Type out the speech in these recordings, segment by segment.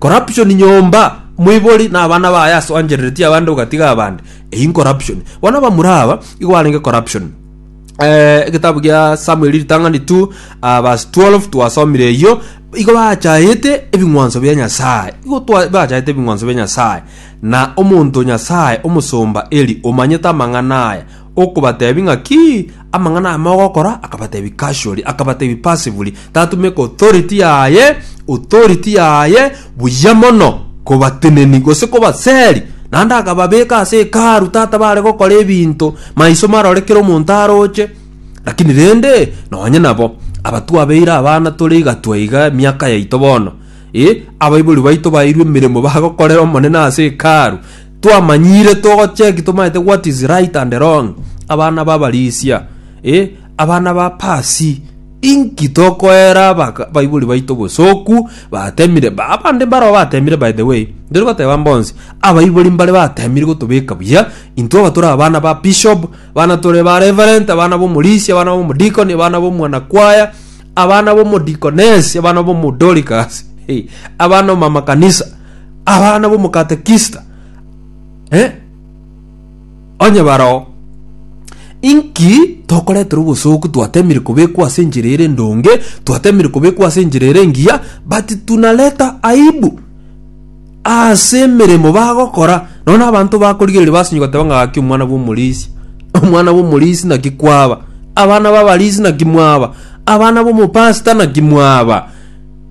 Corruption nyomba, moibori na abana baye ase oanchereretie abande ogatiga abande. Eyio incorruption. Bono abamura aba igo barenge corruption. Eh, egetabu gia Samuel ritang'ani 2 ah, verse 12 twasomire eyio igo bachaete ebing'wanso bia Nyasaye igo twa- bachaete ebing'wanso bia Nyasaye na omonto Nyasaye omosomba Eli omanyete amang'ana aya okobatebi ng'a ki amang'ana aya mogokora, akabatebi casually, akabatebi passively, tatumeka authority yaye, authority yaye buya mono kobateneni gose kobaseri. Naende akababeka ase hekalu tata bare gokora ebinto maiso marore kera omonto aroche, lakini rende nonye nabo abatwabeire abana tore iga twaiga emiaka yaito bono, eh, abaibori baito baeirwe emeremo bagokorera Omonene ase hekalu, twamanyire togocheki tomaete what is right and wrong abana babarisia eh, abana ba pasi inki tokoera abaka- baibori baito bosoku batemire ba- abande mbaro batemire by the way ndiri goteba mbonsi abaibori mbare batemire gotobeka buya intwe aba tore abana ba bishop abana tore ba reverent abana bomorisia abana bomodikoni abana bomwana kwaya abana bomodikonesi abana bomodorikas hey, abana omama kanisa abana bomokatekista eh? onye barao inki tokoretera obosooku twatemire kobekwa ase enchera ere ndonge twatemire kobekwa ase enchera ere engiya but tunareta aibu ase emeremo bagokora nono abanto bakorigereria basinyi goteba ng'a gaki omwana bw'omorisi omwana bw'omorisi naki kwaba abana b'abarisi naki mwaba abana b'omopasita naki mwaba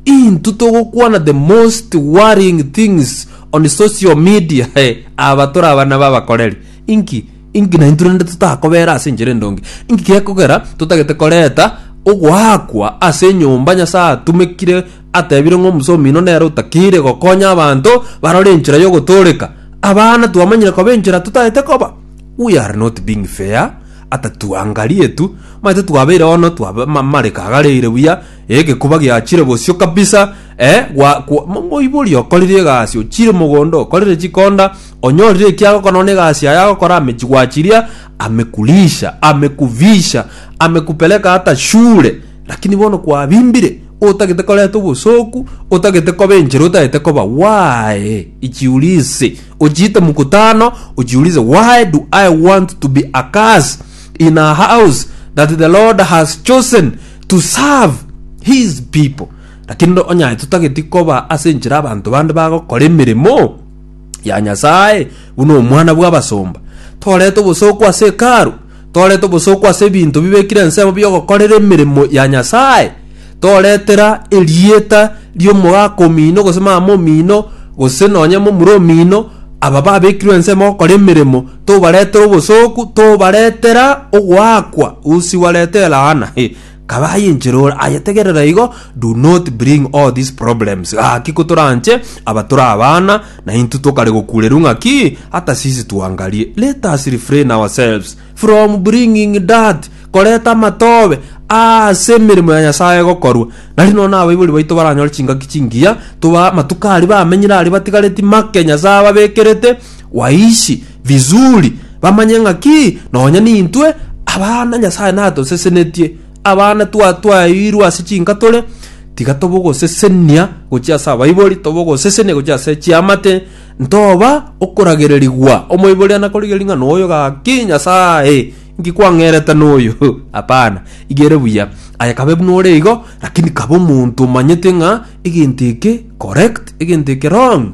Intwe togokwana the most worrying things on social media eh, aba tore abana b'abakoreri. Inki? Inki naintwe rende totakobera ase enchera endonge? Inki gekogera totagete koreta ogoakwa ase enyomba Nyasae atumekire atebire ng'a omosomi oino nere otakeire gokonya abanto barore enchera y'ogotooreka? Abana twamanyire koba enchera totaete koba. We are not being fair ata tuangarie tu, maete twabeire bono twaba ma- mareka agareire buya Egekuba giachire bosio kabisa eh, gwa, gwa, mo- moibori okorire egasi ochire mogondo okorire chikonda onyorire ekiago kono na egasi yaye agokora amechigwachiria amekulisha amekuvisha amekupeleka hata shule lakini bono kwabimbire otagete koreta obosoku otagete koba enchera otagete koba why ichiurise ochiite mkutano ochiurise why do i want to be a curse in a house that the lord has chosen to serve his people lakini onyaye totageti koba ase enchera abanto bande bagokora emeremo ya nyasaye buna omwana bw'abasomba torete obosooku ase ekaru torete obosooku ase ebinto bibekire ensemo biogokorera emeremo ya nyasaye toretera erieta ri'omogaka omino gose mama omino gose nonye momura omino aba babekirwe ensemo gokora emeremo tobaretera obosooku, tobaretera ogoakwa, usi wareta elaana. He, kaba aye enchera ore, aye tegerera igo, do not bring all these problems. Gaki kotoranche, aba tore abana, na intwe tokare gokureru ng'aki, hata sisi tuangarie. Let us refrain ourselves from bringing dirt, koreta amatobe, aase emeremo ya Nyasae egokorwa. Nari nonya na abaibori baito baranyore chingaki chingiya, toba amatuko aria bamenyire aria batigareti make Nyasae ababekerete, waishi vizuri bamanye ng'aki nonya nintwe abana Nyasaye natosesenetie. Abana twatwaeirwe ase chinka tore, tiga tobogosesenia gochia ase abaibori, tobogosesenia gochia ase chiamate, ntoba okoragererigwa omoibori anakorigia ring'ana oyo gaki Nyasaye inki kwang'erete noyo? Hapana, iga ere buya. Aye kabe buna ore igo, lakini kaba omonto omanyete ng'a egento eke correct, egento eke wrong.